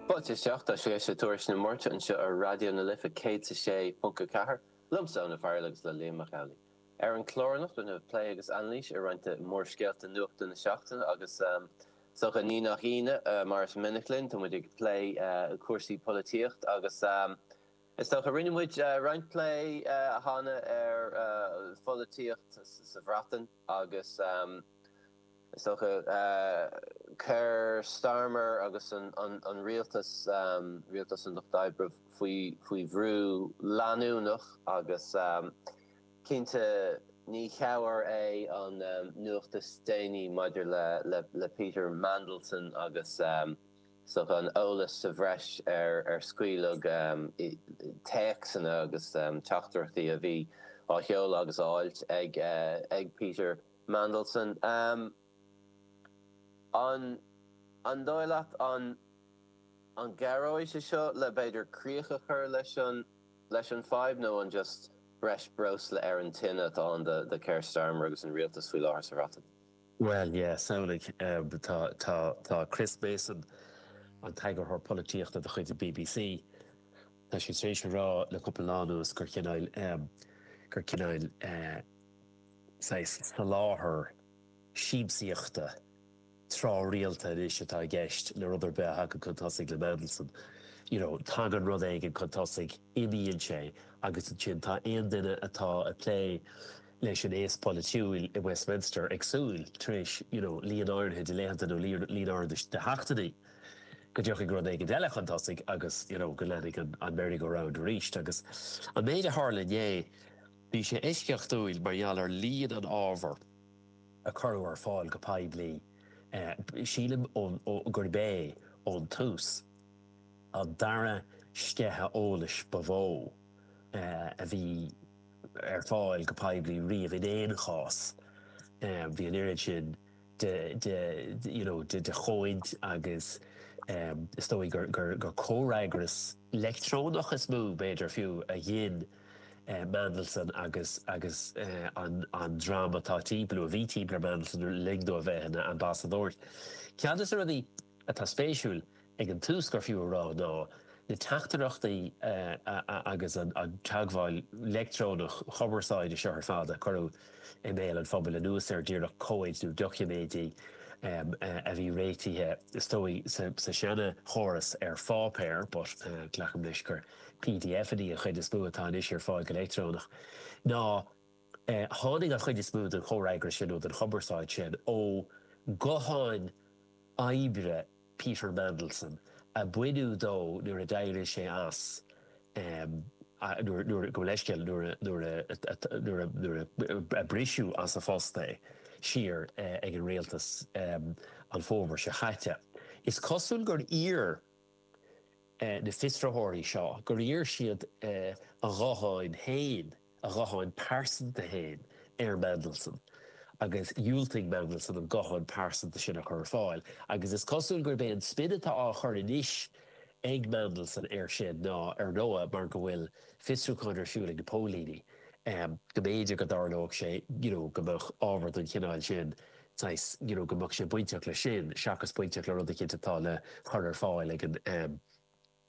Fáilte isteach, tá sibh ag éisteacht le Tuairisc na Máirte anseo ar Raidió na Life 106.4, liomsa, Eoin Ó Fearghail agus le Liam Mac Amhlaigh. Ar an chlár anocht déanfar plé agus anailís ar roinnt de mhórscéalta nuachta na seachtaine agus is dócha. Ní nach ionadh, mar is minic linn, tá muid ag plé cúrsaí polaitíocht agus is dócha rinne muid roinnt plé cheana ar pholaitíocht sa Bhreatain. Agus is dócha Keir Starmer agus an rialtas, rialtas an Lucht Oibre, faoi bhrú leanúnach agus cinnte ní chabhair é an nuacht is déanaí maidir le Peter Mandelson agus. So an t-eolas sa bhreis a scaoileadh téacsanna agus teachtaireachtaí a bhí á sheoladh agus á fháilt ag Peter Mandelson. An dóigh leat an gcabhróidh sé seo le b'fhéidir críoch a chur leis an fhadhb nó an just breis breosla ar an tine atá ann do Keir Starmer agus an rialtas faoi láthair sa Bhreatain? Bhuel, yeah, samhlaigh, tá, tá, tá Chris Mason, an t-eagarthóir polaitíochta de chuid an BBC, tá sé tar éis a rá le cúpla lá anuas gur cineáil, gur cineáil, saghas soláthar siamsaíochta tráthrialta anois atá i gceist le rud ar bith a thagann chun tosaigh le Mandelson. You know, tagann rud éigin chun tosaigh, imíonn sé agus ansin tá aon duine atá ag plé, leis an aos polaitiúil i Westminster ag súil, tar éis you know líon áirithe de laethanta nó líon líon áirithe de de sheachtainí, go dtiocfaidh rud éigin eile chun tosaigh agus you know go leanfaidh an an merry-go-round arís. Agus an méid a tharla inné, bhí sé eisceachtúil mar gheall ar líon an ábhar a cuireadh ar fáil go poiblí. Eh sílim ón ó gurb é, ón tús, an dara sceitheadh eolais ba mhó eh a bhí, ar fáil go poiblí riamh in aon chás. Bhí an oiread sin de you know de chomhaid agus is dóigh gur gur gur comhfhreagras leictreonach is mó b'fhéidir fiú a ghin Mandelson agus agus an an dream atá timpeall nó a bhí timpeall ar Mandelson le linn dó a bheith ina ambasadóir ceann de na rudaí atá spéisiúil ag an tús gur fiú a rá ná na teachtaireachtaí agus an teagmháil leictreonach chumarsáide seo ar fad a cuireadh i mbéal an phobail anuas ar díreach comhaid nó doiciméidí a bhí réitithe is dóigh sa seana chóras ar pháipéar but glacaim leis gur PDFanna an chuid is mó atá anois ar fáil go leictreonach ná tháinig an chuid is mó den chomhfhreagras sin nó den chumarsáid sin ó ghutháin oibre Peter Mandelson a baineadh de nuair a d'éirigh sé as nuair, gabh mo leithscéal, nuair a briseadh as a phost é siar ag an rialtas an fómhar seo chaite. Is cosúil gur iarr. na fiosraitheoirí seo gur iarr siad a ghuthán féin, a ghuthán pearsanta féin, ar Mandelson agus dhiúltaigh Mandelson an guthán pearsanta sin a chur ar fáil agus is cosúil gurb é an spin atá á chur anois ag Mandelson air sin ná, ar ndóigh, mar go bhfuil fiosrúchán ar siúl ag na póilíní, go mb'fhéidir go dtarlódh sé, you know, go mbeadh ábhar den chineál sin saghas you know go mbeadh sé bainteach leis sin seachas bainteach le rud eicínt atá le cur ar fáil ag an ehm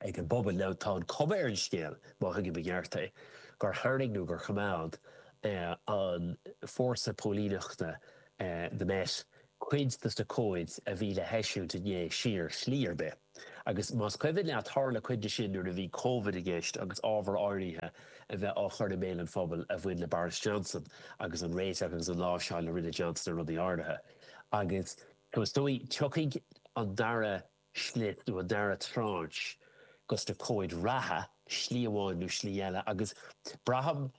ag an bpobal. Now tá an chuma ar an scéal, má thuigim i gceart é, gur tharraing nó gur choimeád eh an fórsa póilíneachta eh the Met cuid dos na comhaid a bhí le heisiúint inné siar slí ar bith. Agus más cuimhin leat tharla cuid de sin nuair a bhí Covid i gceist agus ábhar áirithe a bheith á chur i mbéal an phobail a bhain le Boris Johnson agus an réiteach agus an láimhseáil a rinne Johnson ar rudaí áirithe. Agus is dóigh tiocfaidh an dara slip nó an dara tranche dos na comhaid reatha, slí amháin nó slí eile. Agus braithim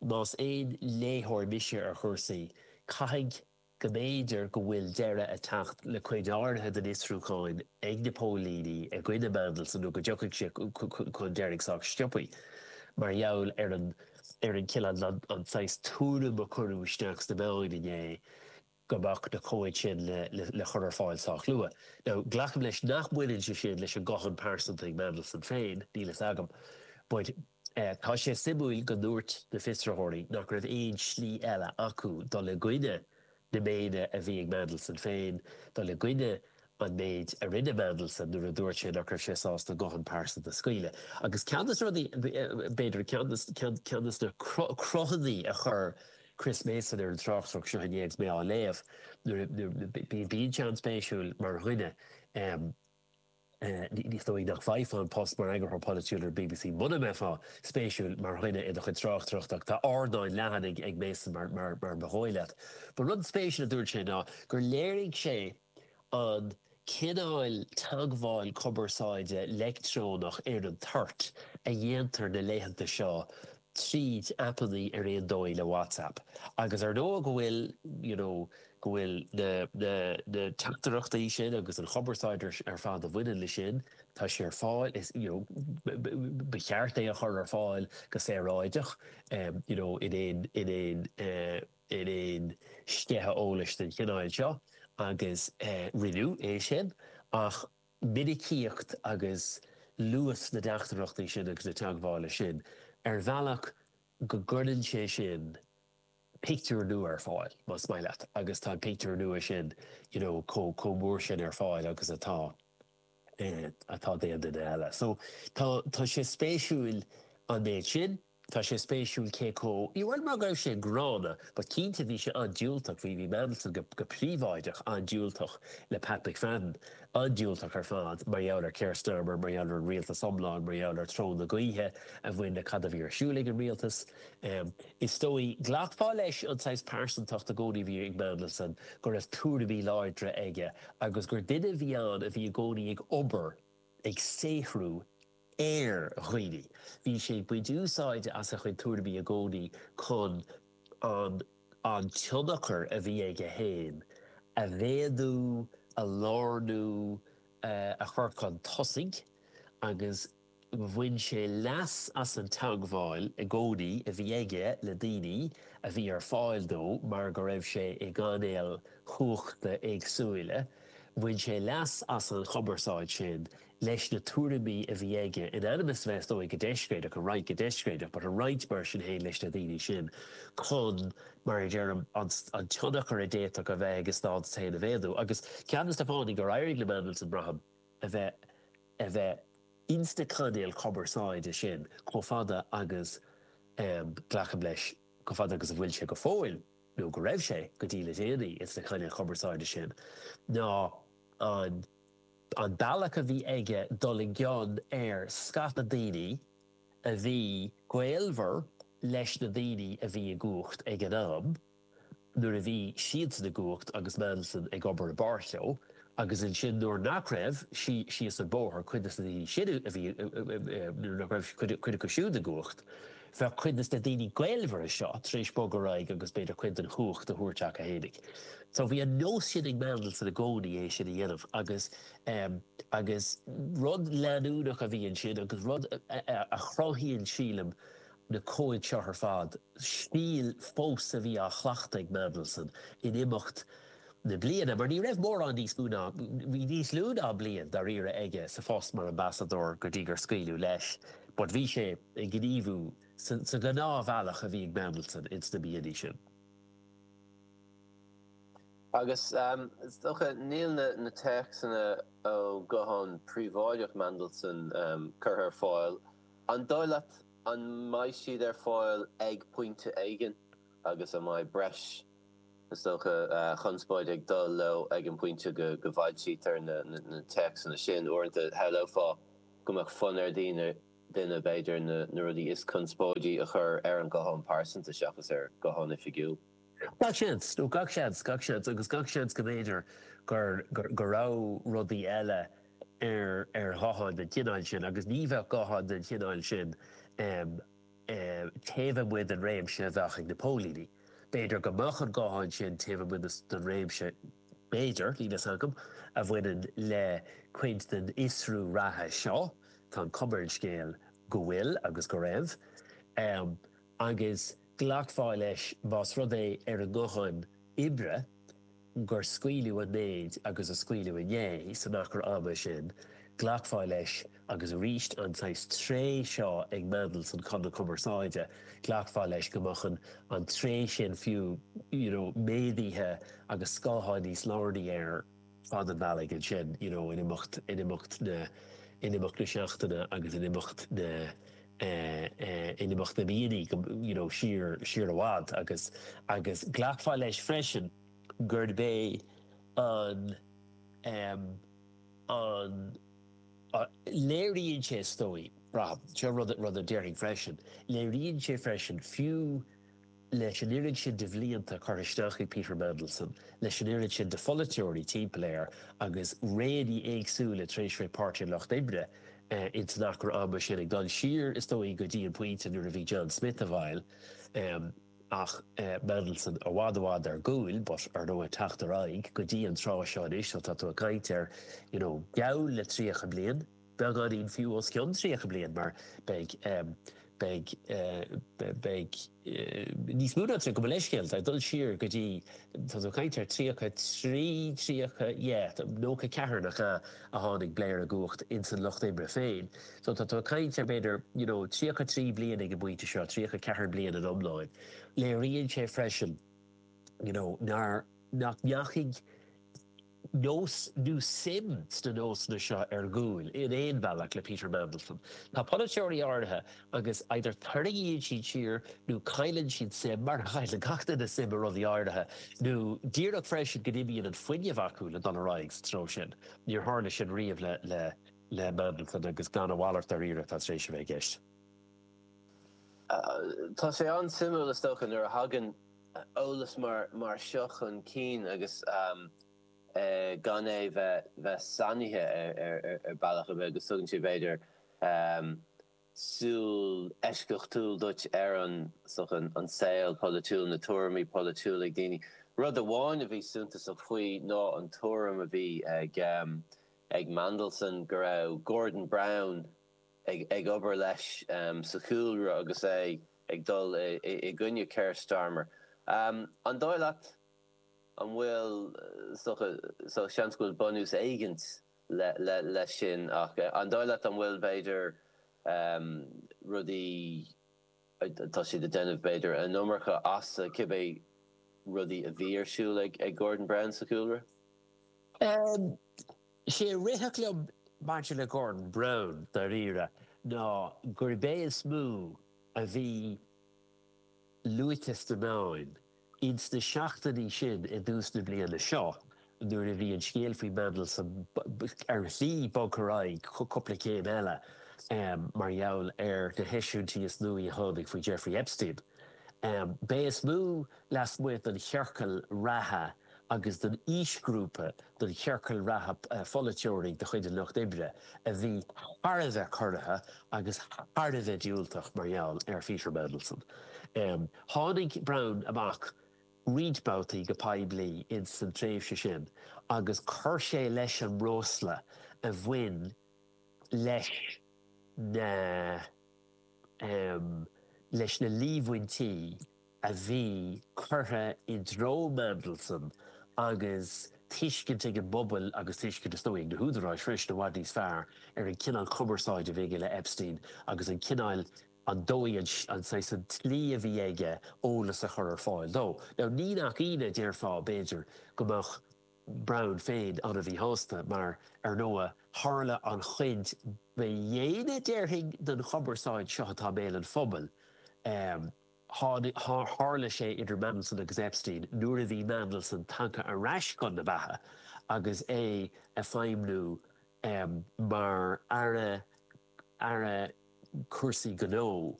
más aon léitheoir mise ar chúrsaí, caithfidh go mb'fhéidir go bhfuil deireadh ag teacht le cuid áirithe den fhiosrúchán ag na póilíní i gcoinne Mandelson nó go dtiocfaidh sé chun deiridh sách sciobtha. Mar gheall ar an ar an cile an saghas tuairim a cuireadh isteach sna meáin inné go mbeadh na comhaid sin le cur ar fáil sách luath. Now glacaim leis nach mbaineann sé sin leis an nguthán pearsanta ag Mandelson féin, níl fhios agam but, Tá sé suimiúil go ndúirt na fiosraitheoirí nach raibh aon slí eile acu dul i gcoinne na méine a bhí ag Mandelson féin, dul i gcoinne an méid a rinne Mandelson nuair a dúirt sé nach raibh sé sásta an guthán pearsanta a scaoileadh. Agus ceann de na rudaí, b'fhéidir, ceann de na cruthanna a chuir Chris Mason ar an tráchtaireacht seo inné agus mé á léamh, bíonn sé an-spéisiúil mar dhuine, Is dóigh nach bhfaighfeá an post mar Eagarthóir Polaitiúil ar bbc muna mbeifeá spéisiúil mar dhuine i do chuid tráchtaireachta ach tá ardán leathan ag Mason mar ba dhóigh leat. Ba rud spéisiúil a dúirt sé ná gur léirigh sé an cineál teagmháil cumarsáide leictreonach ar an toirt a dhéantar na laethanta seo tríd aipeanna ar nós le WhatsApp agus ar ndóigh go bhfuil you know go bhfuil na na na teachtaireachtaí sin agus an chumarsáid ar ar fad a bhaineann le sin tá sé ar fáil is you know b ba cheart é a chur ar fáil go saoráideach em you know in aon in aon eh in aon sceitheadh eolais den chineál seo agus eh rinneadh é sin ach minicíocht agus luas na dteachtaireachtaí sin agus na teagmhála sin ar bhealach go gcuireann sé sin pictiúr nua ar fáil, más maith leat, agus tá an pictiúr nua sin you know chomh mór sin ar fáil agus atá eh atá d'aon duine eile. So tá tá sé spéisiúil an méid sin. Tá sé spéisiúil cé chomh, ní bhuel mar go raibh sé gránna but cinnte bhí sé an-diúltach, bhí, bhí Mandelson go, go príobháideach an-diúltach le Pat McFadden, an-diúltach ar fad mar gheall ar Keir Starmer, mar gheall ar an rialtas iomlán, mar gheall ar treo na gaoithe a bhain le cad a bhí ar siúl ag an rialtas. Is dóigh, ghlacfá leis an saghas pearsantacht i gcónaí a bhí ag Mandelson, go raibh tuairimí láidre aige agus gur duine a bhí ann a bhí i gcónaí ag obair, ag saothrú, ar dhaoine. Bhí sé ag baint úsáide as a chuid tuairimí i gcónaí chun an an tionchar a bhí aige féin a mhéadú, a lárnú, a chur chun tosaigh agus bhain sé leas as an teagmháil i gcónaí a bhí aige le daoine a bhí ar fáil dó mar go raibh sé i gcainéil chumhachta éagsúla. Bhain sé leas as an chumarsáid sin leis na tuairimí a bhí aige, in ainm is a bheith, is dóigh, go deiscréideach, a roinnt go deiscréideach, but a roinnt mar sin féin leis na daoine sin chun, mar a deirim, an tionchar a d'fhéadfadh a bheith ag a stádas féin a mhéadú. Agus ceann de na fáthanna gur éirigh le Mandelson, braithim, a bheith, a bheith ins na cainéil chumarsáide sin chomh fada agus, em, glacaim leis, chomh fada agus a bhfuil sé go fóill, nó go raibh sé go dtí le déanaí ins na cainéil chumarsáide sin, ná an. An bealach a bhí aige dul i gcion ar scata daoine a bhí gaolmhar leis na daoine a bhí i gcumhacht ag an am, nuair a bhí siadsan i gcumhacht agus Mandelson ag obair i bpáirt leo, agus ansin nuair nach raibh, síos an bóthar, cuid de na daoine sin a bhí, nuair nach raibh cuid acu siúd i gcumhacht. Bheadh cuid des na daoine gaolmhara seo tar éis bogadh ar aghaidh agus b'fhéidir cuid den chumhacht a thabhairt acu fhéinig. So bhí an nós sin ag Mandelson i gcónaí é sin a dhéanamh agus agus rud leanúnach a bhí ansin agus rud a chruthaíonn sílim na comhaid seo ar fad, stíl fós a bhí á chleachtadh ag Mandelson in imeacht na bliana mar ní raibh mórán níos lú ná bhí níos lú ná bliain dáiríre aige sa phost mar ambasadóir go dtí gur scaoileadh leis but bhí sé ag gníomhú sa ghnáthbhealach a bhí ag Mandelson ins na blianta sin. Agus is dócha níl na téacsanna ó ghuthán príobháideach Mandelson curtha ar fáil, an dóigh leat an mbeidh siad ar fáil ag pointe éigin agus an mbeidh breis Is dócha conspóid ag dul leo ag an bpointe go bhfoilsítear na téacsanna sin. Uaireanta shamhlófá go mbeadh fonn ar dhaoine, duine, b'fhéidir, na rudaí is conspóidí a chur ar an ghuthán pearsanta seachas ar ghuthán oifigiúil. Gach seans, gach seans, gach seans agus gach seans go mb'fhéidir go raibh rudaí eile ar ghuthán den chineál sin agus ní bheadh guthán den chineál sin taobh amuigh den réimse a bheadh ag na póilíní. B'fhéidir go mbeadh an guthán sin taobh amuigh den réimse, b'fhéidir, níl a fhios agam, a bhaineann le cuid den fhiosrú reatha seo, tá an cuma ar an scéal go bhfuil agus go raibh, agus glacfá leis más rud é ar an nguthán oibre gur scaoileadh an méid agus a scaoileadh inné san achar ama sin, glacfá leis agus arís an saghas tréith seo ag Mandelson, chun na cumarsáide, glacfá leis go mbeadh an an tréith sin fiú you know méadaithe agus scoth níos lárnaí ar fad an bhealaigh ansin you know in imeacht in imeacht na in imeacht na seachtaine agus in imeacht na in imeacht na mblianta go, you know, siar, siar i bhfad agus, agus glacfá leis freisin gurb é an, ehm, an, léiríonn sé, is dóigh, braithim, seo rud, rud a déarfainn freisin, léiríonn sé freisin fiú, leis an oiread sin de bhlianta curtha isteach ag Peter Mandelson, leis an oiread sin de pholaiteoirí timpeall air agus réanna éagsúla tar éis sa Pháirtí an Lucht Oibre in san achar ama sin, ag dul siar is dóigh go dtí an pointe nuair a bhí John Smith i bhfeighil ach Mandelson i bhfad i bhfad ar gcúl but ar ndóigh ag teacht ar aghaidh go dtí an tráth seo anois so tá tú ag caint ar you know geall le 30 bliain. Beagáinín fiú os cionn tríocha bliain mar beidh beidh beidh níos mó ná tríocha, gabh mo leithscéal, tá ag dul siar go dtí tá tú ag caint ar tríocha trí, tríocha yeah nócha ceathair nach ea a tháinig Blair i gcumhacht ins an lucht oibre féin. So tá tú ag caint ar b'fhéidir you know tríocha trí bliain ag an bpointe seo, tríocha ceathair bliain in iomláin. Léiríonn sé freisin you know nár nach ndeachaigh nós nó suim sna nósanna seo ar gcúl in aon bhealach le Peter Mandelson. Tá polaiteoirí áirithe agus either tarraingíonn siad siar nó cailleann siad suim, mar a chailleann gach duine suim i rudaí áirithe, nó díreach freisin go n-imíonn an fuinneamh acu le dul ar aghaidh sa treo sin. Níor tharla sin riamh le Mandelson agus gurb é a mhalairt dáiríre atá tar éis a bheith i gceist. Tá sé an-suimiúil is dócha nuair a thagann eolas mar seo chun cinn agus gan é bheith sainithe ar bhealach ar bith agus tugann sé b'fhéidir súil eisceachtúil duit ar an saol polaitiúil, na tuairimí polaitiúla ag daoine. Rud amháin a bhí suntasach faoi ná an tuairim a bhí ag Mandelson go raibh Gordon Brown, ag obair leis sa chúlra agus é ag dul i gcoinne Keir Starmer. An dóigh leat an bhfuil seans go bhfuil bunús éigint leis sin nó an dóigh leat an bhfuil b'fhéidir rudaí. atá siad ag déanamh b'fhéidir an iomarca as cibé rudaí a bhí ar siúl ag Gordon Brown sa chúlra. Is é a rithfeadh liom maidir le Gordon Brown, dáiríre, ná gurb é is mó a bhí luaite sna meáin, Ins na seachtainí sin i dtús na bliana seo nuair a bhí an scéal faoi Mhandelson ar shlí bogtha ar aghaidh cúpla céim eile mar gheall ar na heisiúintí is nuaí a tháinig faoi Jeffrey Epstein, b'é is mó lasmuigh den chiorcal reatha agus den aoisghrúpa den chiorcal reatha polaiteoirí de chuid an Lucht Oibre a bhí thar a bheith corraithe agus thar a bheith diúltach mar gheall ar Pheter Mandelson. Tháinig Brown amach roinnt babhtaí go poiblí ins an tréimhse sin agus chuir sé leis an mbreosla a bhain leis na leis na líomhaintí a bhí curtha i dtreo Mandelson agus tuiscint ag an bpobal agus tuiscint is dóigh liom ag na húdaráis freisin i bhfad níos fearr ar an cineál cumarsáid a bhí aige le Epstein agus an cineál an dóigh, an saghas, an tslí a bhí aige eolas a chur ar fáil dó. Now ní nach ionadh déarfá, b'fhéidir, go mbeadh Brown féin an-mhíshásta mar, ar ndóigh, tharla an chuid ba dhéine, déarfainn, den chumarsáid seo atá i mbéal an phobail, tháinig, tharla sé idir Mandelson agus Epstein nuair a bhí Mandelson tagtha ar ais chun na beatha agus é ag feidhmniú mar Aire, aire cúrsaí gnó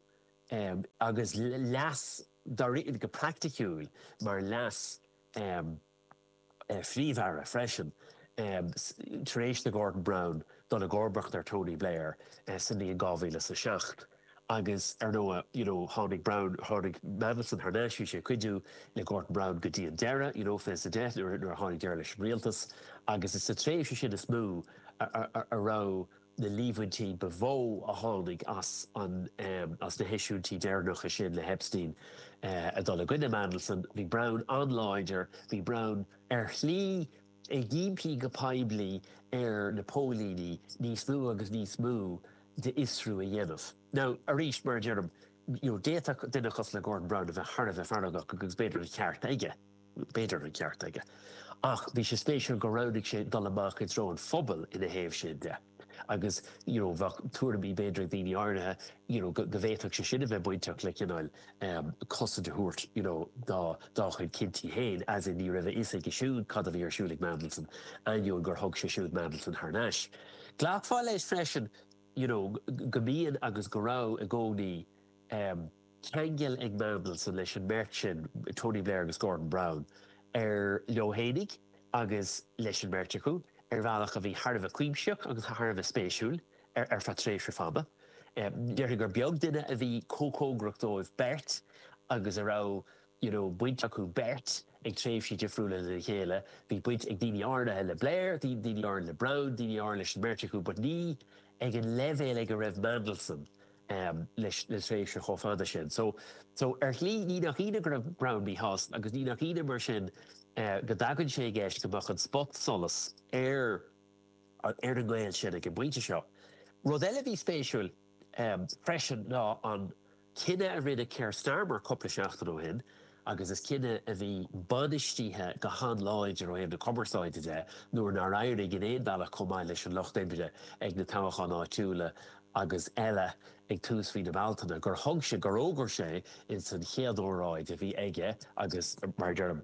agus leas d'áireofaí go praiticiúil mar leas phríomh-aire freisin tar éis do Gordon Brown dul i gcomharbacht ar Tony Blair sa mbliain 2007 agus ar ndóigh you know tháinig Brown tháinig Mandelson thar n-ais bhí sé ag cuidiú le Gordon Brown go dtí an deireadh you know fiche a deich nuair a tháinig deireadh leis an rialtas agus is sa tréimhse sin is mó a raibh na líomhaintí ba mhó a tháinig as na heisiúintí deireanacha sin le hEpstein a dhul i gcoinne Mandelson. Bhí Brown an-láidir. Bhí Brown ar shlí ag impí go poiblí ar na póilíní níos mó agus níos mó d'fhiosrú a dhéanamh. Now, arís, mar a deirim, d'fhéadfadh duine cosúil le Gordon Brown a bheith thar a bheith feargach agus b'fhéidir an ceart aige. B'fhéidir an ceart aige, ach bhí sé spéisiúil gur roghnaigh sé dul amach i dtreo an phobail ina thaobh sin de agus you know bheadh tuairimí b'fhéidir ag daoine áirithe you know go bhféadfadh sé sin a bheith bainteach le cineál um, cosaint a thabhairt you know dá, dá chuid cinntí féin, as in ní raibh a fhios aige siúd cad a bhí ar siúl ag Mandelson, ainneoin gur thug sé siúd Mandelson thar n-ais. Ghlacfá leis freisin you know go mbíonn agus go raibh i gcónaí um, ceangal ag Mandelson leis an mbeirt sin, Tony Blair agus Gordon Brown, leo fhéinig agus leis an mbeirt acu ar bhealach a bhí thar a bheith cuimsitheach agus thar a bheith spéisiúil ar feadh tréimhse fada. Déarfainn gur beag duine a bhí chomh cóngarach dóibh beirt agus a raibh you know baint acu beirt ag tréimhsí difriúla lena chéile. Bhí baint ag daoine áirithe le Blair, daoine áirithe le Brown, daoine áirithe leis an mbeirt acu but ní ag an leibhéal ag a raibh Mandelson le tréimhse chomh fada sin so so ar shlí ní nach ionadh go raibh Brown míshásta agus ní nach ionadh mar sin go dtagann sé i gceist go mbeadh an spot solas ar ar an ngaol sin ag an bpointe seo. Rud eile a bhí spéisiúil freisin ná an cinneadh a rinne Keir Starmer cúpla seachtain ó shin, agus is cinneadh a bhí bainistíthe go han-láidir ó thaobh na cumarsáide de nuair nár éirigh in aon chor chomh maith leis an Lucht Oibre ag na toghcháin áitiúla agus eile ag tús mhí na Bealtaine gur thug sé, gur fhógair sé ins an chéad óráid a bhí aige agus mar a deirim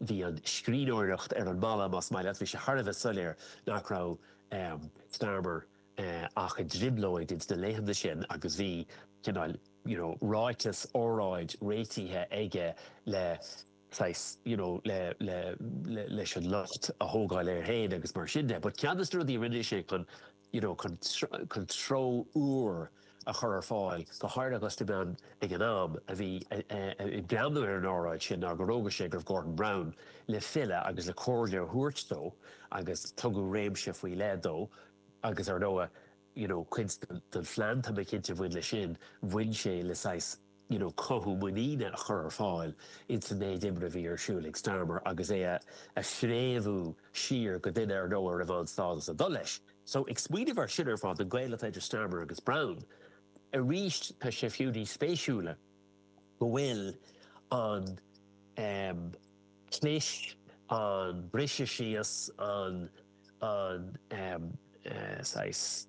bhí an scríbhneoireacht ar an mballa más maith leat, bhí sé thar a bheith soiléir nach raibh Starmer ach i dtrioblóid ins na laethanta sin agus bhí cineál. you know, ráiteas, óráid, réitithe aige le, saghas, you know, le, le, le, leis an lucht a thógáil air féin agus mar sin de. But ceann de na rudaí a rinne sé chun, you know, chun, chun treo úr a chur ar fáil, go háirithe agus na meáin ag an am a bhí, a, a, a, ag breathnú ar an óráid sin ná gur fhógair sé go raibh Gordon Brown le filleadh agus le comhairle a thabhairt dó agus tugadh réimse faoi leith dó agus, ar ndóigh, you know cuid den phlean tá mé cinnte a bhain leis sin, bhain sé le saghas you know cothú muiníne a chur ar fáil ins an méid iomraimh a bhí ar siúl ag Starmer agus é a a phréamhú siar go duine ar ndóigh a raibh an-stádas ag dul leis. So ag smaoineamh ar sin ar fad an gaol atá idir Starmer agus Brown arís tá sé fiú níos spéisiúla go bhfuil an ehm clis, an briseadh síos, an. an saghas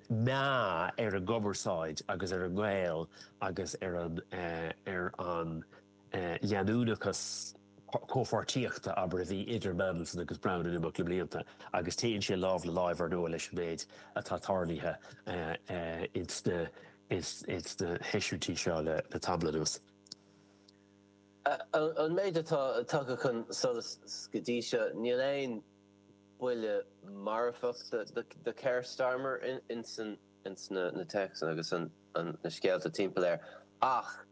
meath ar an gcumarsáid agus ar an ngaol agus ar an ar an leanúnachas comhpháirtíochta, abair, a bhí idir Mandelson agus Brown in imeacht na mblianta agus téann sé lámh le láimh, ar ndóigh, leis an méid atá tarlaithe ins na ins na heisiúintí seo le tamall anuas. An méid atá tagtha chun solais go dtí seo, níl aon. buille marfach do Keir Starmer ins na téacsanna agus na scéalta timpeall air ach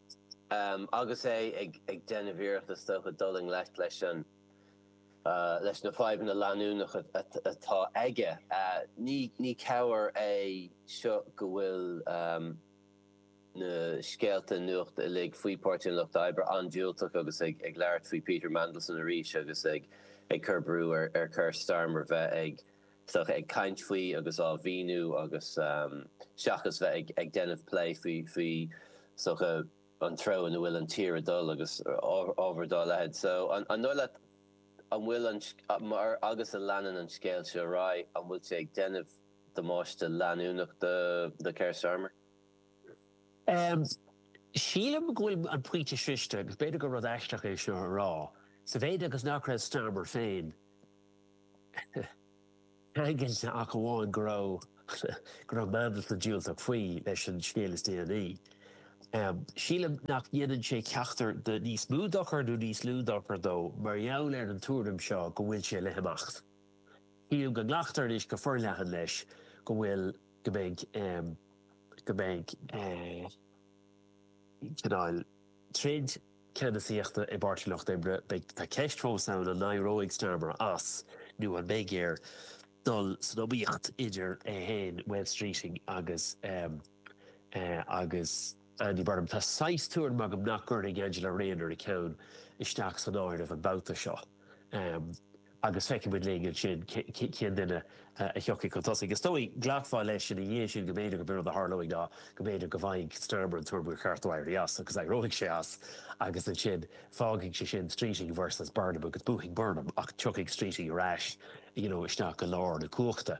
agus é ag déanamh iarracht is dócha dul i ngleic leis na fadhbanna leanúnacha atá aige. Ní cabhair é seo go bhfuil. na scéalta nuachta uilig faoi Páirtí an Lucht Oibre an-diúltach agus ag labhairt faoi Peter Mandelson arís agus ag cur brú ar Keir Starmer bheith ag ag caint faoi agus á mhíniú agus seachas bheith ag ag déanamh plé faoi faoi an treo ina bhfuil an tír ag dul agus ábhar dá leithéid. So an dóigh leat an bhfuil an mar agus a leanann an scéal seo ar aghaidh, an bhfuil sé ag déanamh damáiste leanúnach do Keir Starmer? Sílim go bhfuil an pointe sroichte agus b'fhéidir gur rud aisteach é seo a rá, sa mhéid is nach raibh Starmer féin ceangailte ach amháin go raibh go raibh Mandelson diúltach faoi leis an scéal is déanaí. Sílim nach ndéanann sé ceachtar de níos mó dochair nó níos lú dochair dó mar gheall ar an tuairim seo go bhfuil sé le himeacht. Sílim go nglactar anois go forleathan leis go bhfuil. go mbeidh go mbeidh cineál troid ceannasaíochta i bPáirtí Lucht Oibre. Beidh tá ceist fós ann an n-éireoidh Starmer as nó an mbeidh air dul san iomaíocht idir é féin, Wes Streeting agus agus. Andy Burnham, Tá saghas tuairim agam nach gcuirfidh Angela Rayner a ceann isteach san áireamh an babhta seo agus feicfidh muid linn ansin cén duine a thiocfaidh chun tosaigh. Is dóigh go nglacfá leis ina dhiaidh sin go mb'fhéidir gurb é rud a tharlóidh ná go mb'fhéidir go bhfaighidh Starmer an tuairim gur cheart dó éirí as agus éireoidh sé as agus ansin fágfaidh sé sin Streeting versus Burnham agus buafaidh Burnham ach tiocfaidh Streeting ar ais, you know, isteach go lár na cumhachta.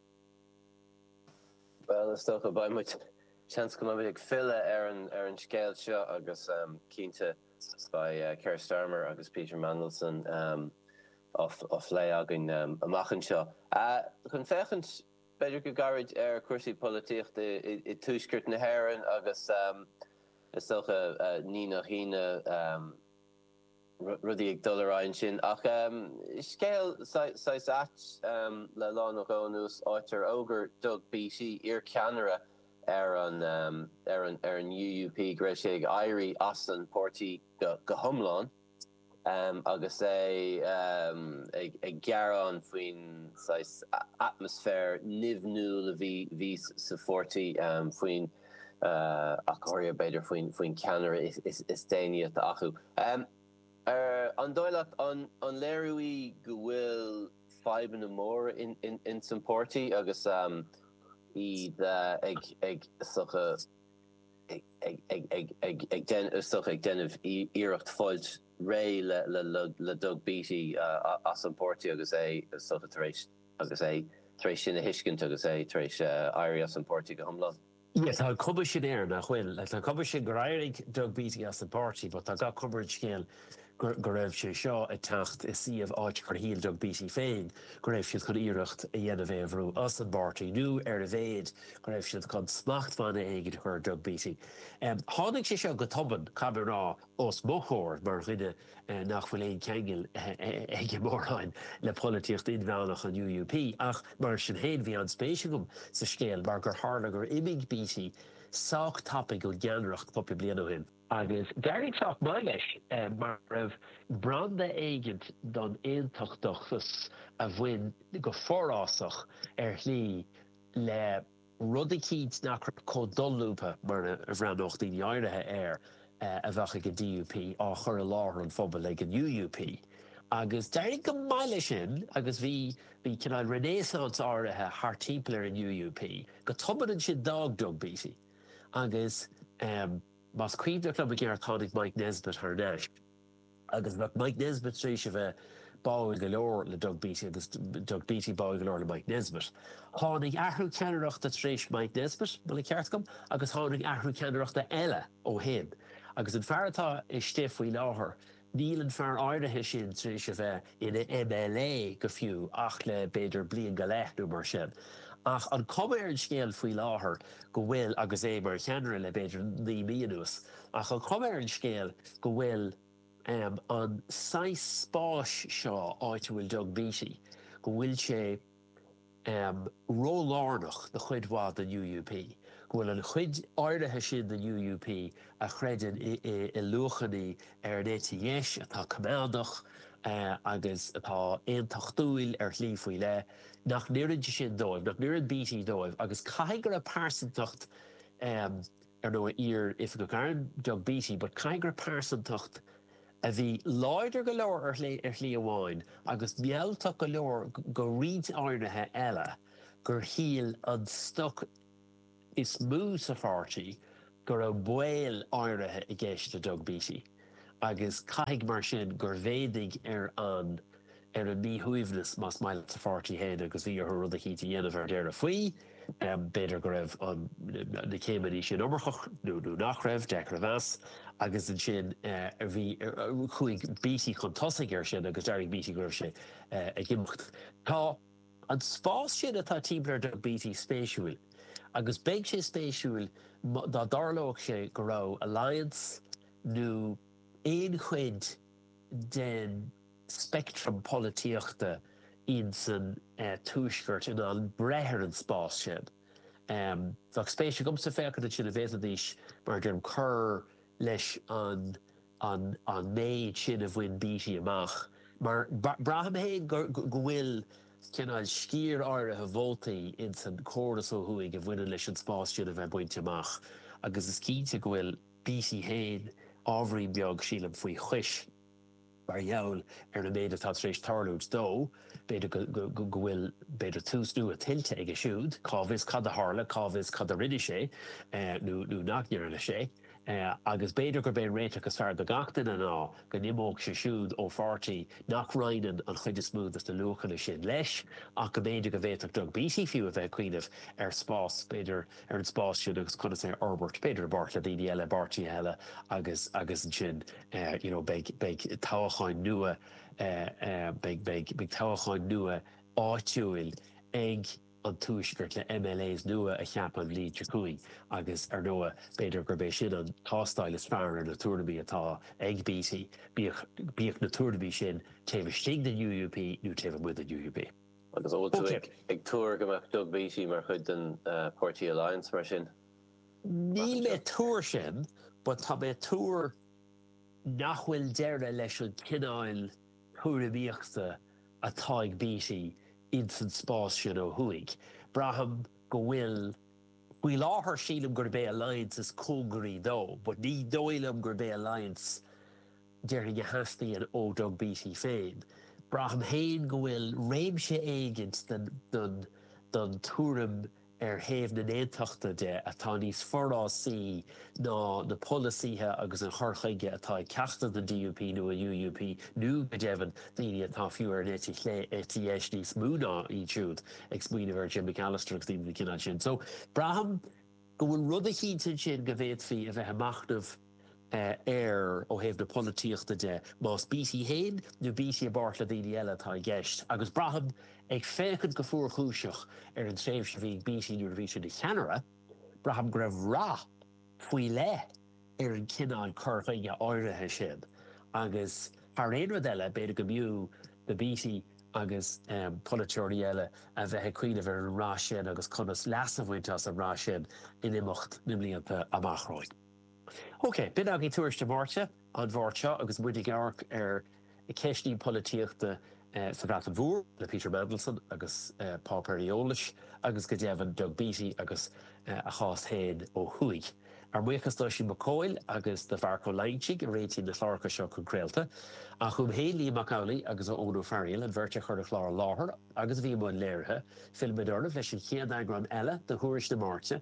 Bhuel, is dócha, beidh muid, seans go mbeidh muid ag filleadh ar an ar an scéal seo agus cinnte beidh Keir Starmer agus Peter Mandelson á bplé againn amach anseo. Chun féachaint b'fhéidir go gairid ar chúrsaí polaitíochta i Tuaisceart na hÉireann agus is dócha ní nach ionadh, rudaí ag dul ar aghaidh ansin. Ach scéal saghas ait le lá nó dhó anuas, áit ar fhógair Doug Beattie, iar ceannaire ar an UUP go raibh sé ag éirí as an páirtí go hiomlán agus é ag gearán faoin saghas atmaisféar nimhiúil a bhí sa pháirtí faoin ach go háirithe b'fhéidir faoin cheannaire is déanaí atá acu. Ar an dóigh leat, an léiriú é go bhfuil fadhbanna móra ins an páirtí agus iad ag, is dócha, ag déanamh iarracht fáilt réidh le Doug Beattie as an bpáirtí agus é, is dócha, tar éis agus é tar éis sin a thuiscint agus é tar éis éirí as an bpáirtí go hiomlán. Yeah, tá an cuma sin air nach bhfuil, tá an cuma sin gur éirigh Doug Beattie as an bpáirtí, but tá gach cuma ar an scéal go raibh sé seo ag teacht i suíomh áit gur shíl Doug Beattie féin go raibh siad chun iarracht a dhéanamh é a bhrú as an bpáirtí nó ar a mhéid go raibh siad chun smachtbhanna éigin a chur ar Doug Beattie. Tháinig sé seo go tobann, caithfidh mé a rá, os mo chomhair mar dhuine nach bhfuil aon cheangal aige mórán le polaitíocht inmheánach an UUP, ach mar sin féin bhí an-spéis agam sa scéal mar gur tharla gur imigh Beattie sách tapaidh ón gceannaireacht cúpla bliain ó shin. Agus d'éirigh sách maith leis mar go raibh branda éigin don aontachtachas a bhain go forásach ar shlí le. rud eicínt nach raibh chomh dolúbtha mar a bhreathnódh daoine áirithe air a bheadh ag an DUP, á chur i láthair an phobail ag an UUP. Agus d'éirigh go maith leis sin agus bhí bhí cineál renaissance áirithe thart timpeall ar an UUP. Go tobann ansin d'fhág Doug Beattie agus más cuimhneach liom i gceart tháinig Mike Nesbitt thar n-ais. Agus bheadh Mike Nesbitt tar éis a bheith báúil go leor le Doug Beattie agus Doug Beattie báúil go leor le Mike Nesbitt. Tháinig athrú ceannaireachta tar éis Mike Nesbitt, má tá an ceart agam, agus tháinig athrú ceannaireachta eile ó shin. Agus an fear atá istigh faoi láthair, níl an fear áirithe sin tar éis a bheith ina MLA go fiú ach le b'fhéidir bliain go leith nó mar sin. Ach an cuma ar an scéal faoi láthair go bhfuil, agus é mar cheannaire le b'fhéidir naoi mí anuas, Ach an chuma ar an scéal go bhfuil an saghas spáis seo, áit a bhfuil Doug Beattie, go bhfuil sé ró-lárnach do chuid mhaith den UUP, go bhfuil an chuid áirithe sin den UUP a chreideann i luachanna ar an eite dheis, atá coimeádach, eh, agus atá aontachtúil ar shlí faoi leith, nach n-oireann sé sin dóibh, nach n-oireann Beattie dóibh agus caithfidh go raibh pearsantacht ar ndóigh, iar-oifigeach airm Doug Beattie, but caithfidh go raibh pearsantacht a bhí láidir go leor ar shlí, ar shlí amháin, agus mealltach go leor do roinnt áirithe eile, gur shíl an stoc is mó sa pháirtí go raibh baol áirithe i gceist le Doug Beattie. agus caithfidh mar sin gur mhéadaigh ar an ar an míshuaimhneas, más maith leat, sa pháirtí féin agus bhí orthu rud éicint a dhéanamh ar deireadh faoi. B'fhéidir go raibh an na céimeanna sin iomarcach nó nó nach raibh, deacair a mheas, agus ansin bhí chuaigh Beattie chun tosaigh ar sin agus d'fhógair Beattie go raibh sé ag imeacht. Tá. An spás sin atá timpeall ar Doug Beattie spéisiúil agus bheadh sé spéisiúil dá dtarlódh sé go raibh Alliance nó aon chuid den speictream polaitíochta ins an Tuaisceart in ann breith ar an spás sin. Bheadh spéis agamsa féachaint ansin an bhféadfaidís, mar a deirim, cur leis an. an méid sin a bhain Beattie amach mar braithim féin go bhfuil cineál sciar áirithe vótaí ins an chóras ó thuaidh a bhaineann leis an spás sin le bheith bainte amach agus is cinnte go bhfuil Beattie féin ábhairín beag, sílim, faoi chois mar gheall ar an méid atá tar éis tarlúint dó. B'fhéidir go bhfuil, b'fhéidir, tús nua tuillte aige siúd, cá bhfios cad a tharla, cá bhfios cad a rinne sé nó nach ndearna sé. agus b'fhéidir gurb é an réiteach is fearr do gach duine ná go n-imeodh sé siúd ó pháirtí nach roinneann an chuid is mó de na luachanna sin leis, ach go mb'fhéidir go bhféadfadh Doug Beattie fiú a bheith ag cuimhneamh ar spás, b'fhéidir, ar an spás sin agus conas é a fhorbairt, b'fhéidir i bpáirt le daoine eile, i bpáirtithe eile agus, agus ansin you know beidh, beidh toghacháin nua, beidh, beidh, beidh toghacháin nua áitiúil ag. an Tuaisceart le MLAs nua a cheapadh an bhliain seo chugainn agus ar ndóigh b'fhéidir gurb é sin an tástáil is fearr ar na tuairimí atá ag Beattie, bíodh na tuairimí sin taobh istigh den UUP nó taobh amuigh den UUP. Agus an bhfuil tú ag tuar go mbeadh Doug Beattie mar chuid den páirtí Alliance mar sin? Níl mé ag tuar sin but tá mé ag tuar nach bhfuil deireadh leis an chineál thuairimíochta atá ag Beattie ins an spás sin ó thuaidh. Braithim go bhfuil, faoi láthair sílim gurb é Alliance is cóngaraí dó but ní dóigh liom gurb é Alliance déarfainn a theastaíonn ó Doug Beattie féin. Braithim féin go bhfuil réimse éigint den tuairim, ar thaobh na nAontachtaithe de, atá níos forásaí ná na polasaithe agus an chur chuige atá ag ceachtar den DUP nó an UUP, nó, go deimhin, daoine atá fiú ar an eite chlé, eite dheis níos mó ná iad siúd, ag smaoineamh ar Jim Allister agus daoine den chineál sin. So, braithim go bhfuil rud eicínt ansin go bhféadfaí a bheith ag machnamh. air ó thaobh na polaitíochta de, más Beattie fhéin nó Beattie i bpáirt le daoine eile atá i gceist, agus braithim, ag féachaint go fuarchúiseach ar an tréimhse a bhí ag Beattie nuair a bhí sé ina cheannaire, braithim go raibh rath faoi leith ar an chineál cur chuige áirithe sin agus thar aon rud eile b'fhéidir go mb'fhiú do Beattie agus polaiteoirí eile a bheith ag cuimhneamh ar an rath sin agus conas leas a bhaint as an rath sin in imeacht na mblianta amach romhainn. OK, b'in againn Tuairisc na Máirte an Mháirt seo agus muid ag amharc ar cheisteanna polaitíochta sa Bhreatain Mhór le Peter Mandelson agus páipéir eolais agus go deimhin Doug Beattie agus a chás féin ó thuaidh. Ár mbuíochas d'Oisín Mac Cóil agus do Mharc Ó Loingsigh a réitíonn na cláracha seo chun craolta. Ach uaim féin, Liam Mac Amhlaigh agus Eoin Ó Fearghaíl, an bheirt a chuir an clár i láthair agus a bhí i mbun léirithe, fillfimid oraibh leis an chéad eagrán eile de Thuairisc na Máirte,